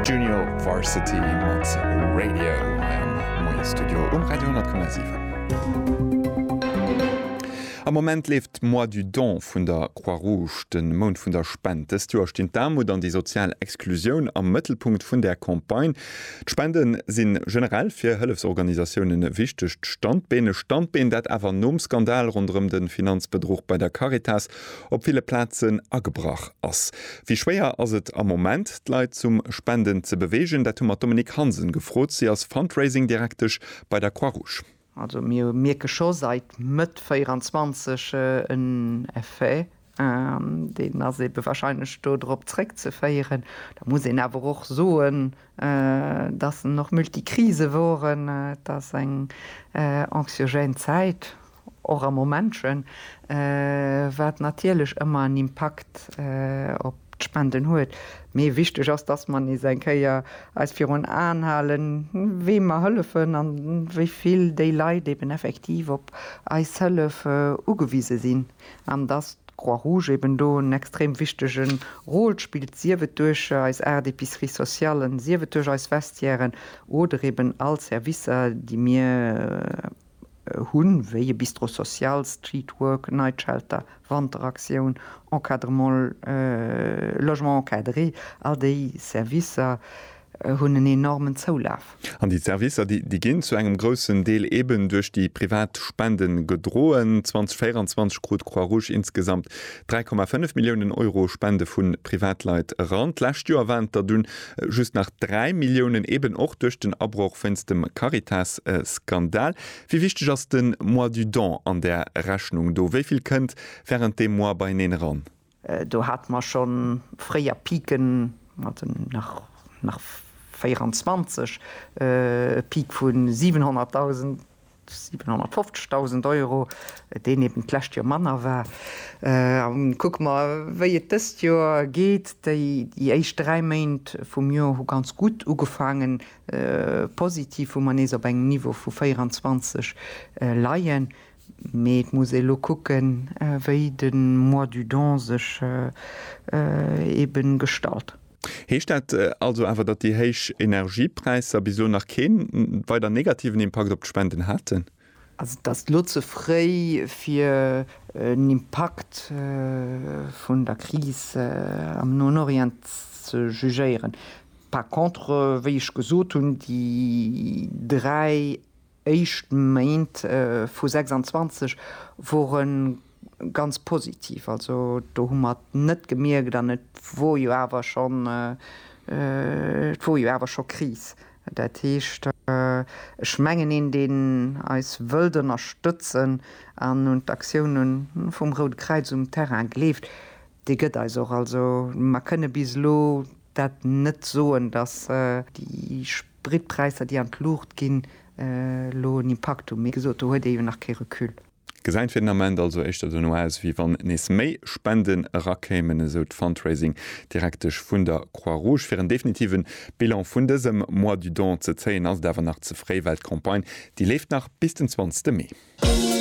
Junior Varsity mat Radio hei am Moiesstudio um Radio 10,7. Am Moment leeft d'Mois du Don vun der Croix Rouge, de Mount vun der Spend. Dëst Joer stinn d'Aarmut an déi sozial Exklusioun am Mëttelpunkt vun där Campagne. D'Spende si generell fir Hëllefsorganisatiounen e wichtegt Standbeen. E Standbeen, dat awer nom Skandal ronderëm de Finanzbedruch bei der Caritas op ville Plazen agebrach ass. Wéi schwéier ass et am Moment, d'Leit zum Spenden ze beweegen? Dat hu mer d'Dominique Hansen gefrot. Si ass Fundraising-Direktesch bei der Croix-Rouge. Also mir mierke scho seit Mëtt 24 en Effet an deen ass eebe wahrscheinlech do drop zréckzeféieren. Da muss een awer och soen, dass en och Multikrise woren. Et ass eng anxiogène Zäit, Och a Momentchen, wat natierlech ëmmer en Impakt op d'Spenden huet. Mee wichteg ass, dass mer nees eng Kéier eis virun Aen halen, weem mer hëllefen an wéi vill déi Leit eben effektiv op eis Hëllef ugewise sinn. An dass d'Croix Rouge eben do en extrem wichtege Rôle spillt, sief et duerch eis aacht Epiceries sociallen, sief et duerch eis Vestiairen oder eben all Servicer, déi mir hunn, wéi e Bistro social, Street Work, Night Shelter, Wanteraktioun, Encadrement, Logement encadré, all déi Servicer hunn en enormen Zoulaf. An déi Servicer, déi ginn zu engem groussen Deel eeben duerch déi privat Spenden gedroen. 2024 krut d'Croix Rouge insgesamt 3,5 Milliounen Euro Spende vu Privatleit eran. D'lescht Joer waren et der dunn Just nach 3 Milliounen, eben och duerch den Abroch wéinst dem Caritas-Skandal. Wéi wichteg ass de Mois du don an där Rechnung do? Wéi vill kënnt wärend deem Mois beieneen eran? Do hate mer scho fréier Piken, mat den nach 24 e Pik vu 700.000 750.000 Euro, deen eben d'lescht Joer manner war. A kucke mer, wéi et dëst Joer geet. Déi éischt dräi Méint vum Joer hu ganz gutt ugefaangen, positiv, wou mer nees op engem Niveau vu 24 leien. Mee et muss ee lo kucken, wéi de Mois du don sech eben gestalt. Heescht dat also awer, datt déi héich Energiepräisser bis elo nach kee weider negativen Impakt op d'Spenden haten? Also et ass elo ze fréi fir en Impakt vun der Kris am Noen Orient ze jugéieren. Par contre, wéi ech gesot hunn, déi dräi. éischt Méint vu 26 wore ganz positiv. Also do hu mer et net gemierkt an et wor jo awer schonn, et wor jo awer scho Kris. Dat heescht, ech mengen, een deen eis wëllt ënnerstëtzen an un d'Aktioune vum Roude Kräiz um Terrain gleeft, dee gëtt eis och. Also mer kënne bis elo dat net soen, datt déi D'Brittpräisser déi an d'Luucht ginn elo en Impakt hunn, mee gesot do huet ee jo nach kee Recul. Gesäit fir den Ament also éischter dono aus, wéi wann nees méi Spenden erakéimen, esou d'Fundraising Direktesch vun der Croix Rouge. Fir en definitive Bilan vun dësem Mois du Don ze zéien, ass et awer nach ze fréi, well d'Campagne déi leeft nach bis den 20 Mee.